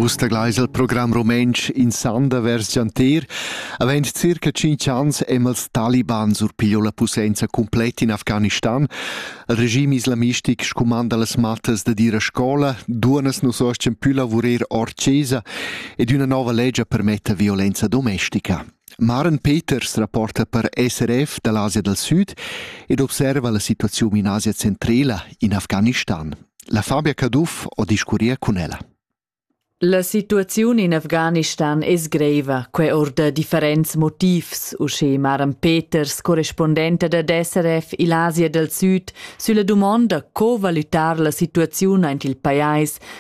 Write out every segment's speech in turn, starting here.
Vus tagleis il program rumentsch in sanda vers gianter. Avend circa 5 ans emma els taliban surpiglio la posenza completa in Afghanistan. Il regime islamistic scumanda las mattas da dir a scola, duonas nos ostien più lavurer or cesa ed una nova legge permetta violenza domestica. Maren Peters rapporta per SRF da l'Asia dal Sud ed observa la situaziun in Asia centrala, in Afghanistan. La Fabia Caduff ho discurrier cun ella. La situaziun in Afghanistan es greiva, que or da differents motivs, usche Maren Peters, correspondenta da SRF il Asia dal Sud, sülla dumonda co valutar la situaziun aint il pajais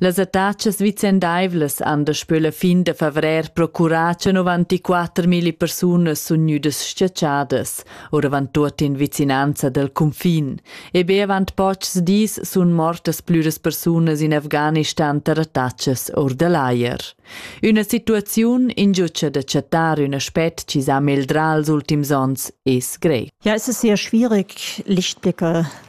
Las attachas vicendaivlas han daspö la fin da favrer procurà tschenovanti quattermilli persunas sun gnüdas schatschadas, oravant tuot in vicinanza dal cunfin. E be avant pochs dis sun mortas plüras persunas in Afghanistan tar attachas or da l'ajer. Üna situaziun ingiutscha da chattar ün aspet chi s'ha meldrà als ultims ons es grec. Ja, es es sehr schwierig, Lichtblicke